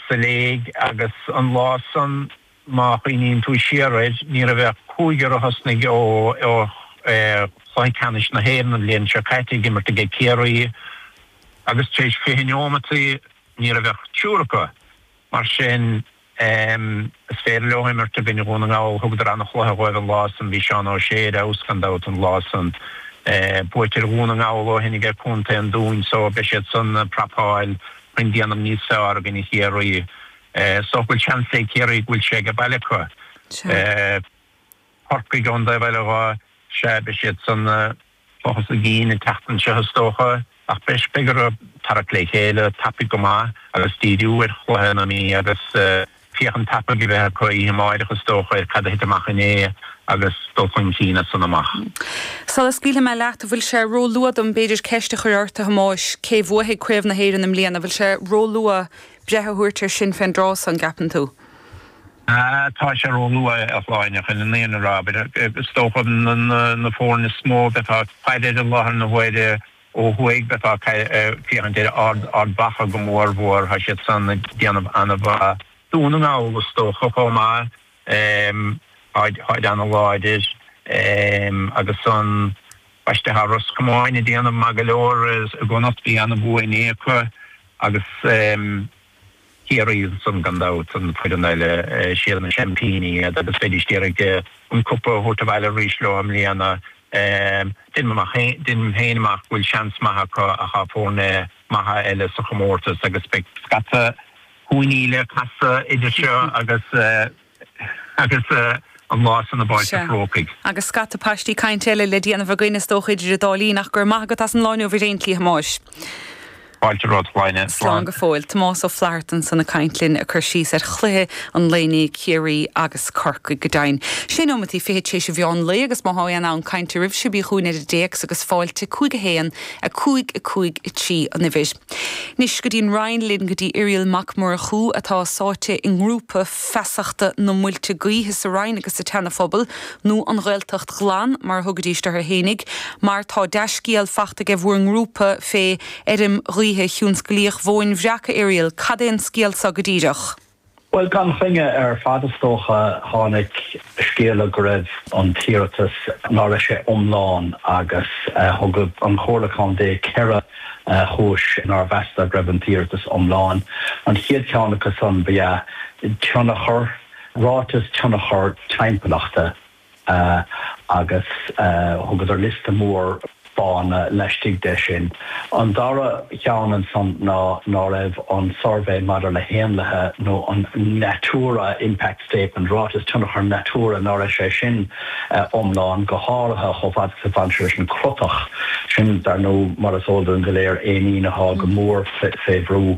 sa léig, agus an lá san, má chuimhníonn tú siar air, ní raibh ach cúigear a thosnaigh ó Chluiche Ceannais na hÉireann an bhliain seo caite ag imirt aige Ciarraí agus tar éis fiche neomataí ní raibh ach triúr acu. Mar sin, is féidir leo imirt i gcoinne Dhún na nGall. Thugadar an-chluiche dhóibh an lá san. Bhí Seán Ó Sé ar fheabhas, gan dabht, an lá san. Buaite ar Dhún na nGall ó shin aige Contae an Dúin, so beidh siad san ag prapáil chun déanamh níos fearr i gcoinne Chiarraí. Is dócha go bhfuil seans ag Ciarraí go bhfuil sé ag baile acu. Corcaigh gan dabht, bhuel, á sea, beidh siad san ag tochas a gcinn an tseachtain seo is dócha, ach breis beidh orthu tarrac le chéile, tapaidh go maith agus díriú ar chluiche na Mí agus féachaint tapaidh a bheith acu oíche amáireach, is dócha, ar cad a thit amach inné agus dul chun cinn as san amach. Sula scaoilfidh mé leat, bhfuil sé róluath dom b'fhéidir ceist a chur ort, a Thomáis, cé bhuafaidh Craobh na hÉireann i mbliana? Bhfuil sé róluath breith a thabhairt air sin fén dtráth san, gceapann tú? Tá sé róluath, a Shláine, chun an fhírinne a rá, is dócha na foirne is mó a bheifeá ag faire ar i láthair na huaire, Ó thuaidh bheifeá ag féachaint ar Ard Mhacha go mór mhór. Tá siad san ag déanamh ana-mhaith. Dún na nGall is dócha chomh maith. Táid ana-láidir. Agus ansan b'fhéidir, tá Ros Comáin ag déanamh maith go leor i gConnachta, bhí ana-bhua inné acu agus Ciarraí ansan, gan dabht, an foireann eile, siad na seaimpíní, iad agus bheidís d'iarraidh an cupa a thabhairt abhaile arís leo i mbliana. Deinim féin amach go bhfuil seans maith acu ach tá foirne maithe eile sa chomórtas agus beidh scata cúinní le casadh idir seo agus. Agus an lá san i bPáirc a' Chrócaigh. Sea. Agus scata paistí cainte eile le déanamh againn, is dócha, idir an dá linn, ach go raibh maith agat as an lá inniu ar aon tslí, a Thomáis. Fáilte romhat, a Shláine. Slán go fóill. Tomás Ó Flatharta ansan ag caint linn, ag cur síos ar chluiche an lae inné, Ciarraí agus Corcaigh, go deimhin. Sé nóimeataí fichead tar éis a mheán lae, agus má tá aon fhonn cainte oraibhse, bí chugainn ar an dtéacs, agus fáilte, 5 1 5 5 3, an uimhir. Anois go dtí an Rinn linn, go dtí Irial Mac Murchú, atá sáite i ngrúpa. feasachta na muilte gaoithe sa Rinn agus sa tSeana Phobal, nó an Ghaeltacht Ghlan mar a thugaid siad orthu fhéinig, mar tá dea-scéal fachta aige bhur ngrúpa fé fheirm ghaoithe thionsclaíoch Mhóin Bhreac, a Irial, cad é an scéal so go díreach? Bhuel gan choinne ar fad is dócha, tháinig. scéala go raibh an t-iarratas, ná raibh sé iomlán, agus thug an Chomhairle Contae ceithre chúis nár mheasadar go raibh an t-iarratas iomlán. An chéad cheann acu san ba ea tionchar, ráiteas tionchar timpeallachta, agus thugadar liosta mór. fána laistigh de sin. An dara cheann ansan ná ná raibh an Suirbhé maidir le hÉanlaithe nó an Natura Impact Statement, Ráiteas Tionchar Natura, ná raibh sé sin iomlán, go háirithe chomh fada is a bhain sé leis an chrotach. Sin, dar ndú, mar is eol dúinn go léir, éinín athá go mór fé bhrú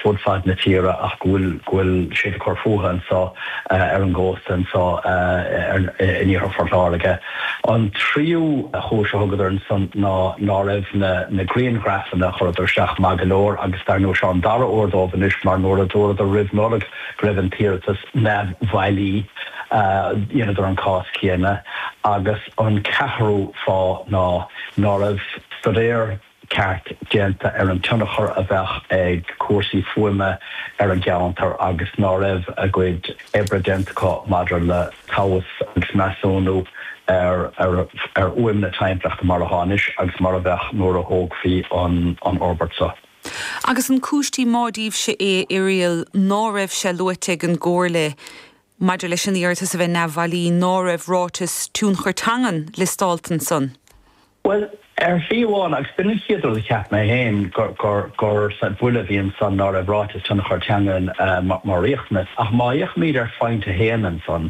fud fad na tíre ach go bhfuil siad ag cur fútha anso ar an gcósta anso in iarthar Phort Láirge. An tríú chúis a thugadar ansan ná ná raibh na na grianghrafanna a chuireadar isteach maith go leor agus dar ndóigh seo an dara huair dóibh anois mar nuair a dúradar roimh Nollaig go raibh an t-iarratas neamhbhailí dheineadar an cás céanna agus an ceathrú fáth ná ná raibh stuidéar ceart déanta ar an tionchar a bheadh ag cúrsaí fuaime ar an gceantar agus ná raibh a gcuid oibre déanta acu maidir le tomhas agus measúnú ar fhuaim na hainpleachta mar atá anois agus mar a bheadh nuair a thógfaí an fhorbairt seo. Agus an cúis díomá daoibhse é, Irial, ná raibh sé luaite ag an gComhairle maidir leis an iarratas a bheith neamhbhailí ná raibh ráiteas tionchar teangan liostálta ansan? Bhuel, ar shlí amháin, agus b'in an chéad rud a cheap mé féin, gur buille a bhí ansan ná raibh ráiteas tionchar teangan mar riachtanas. Ach má fhéachaimid ar phointe 1 ansan,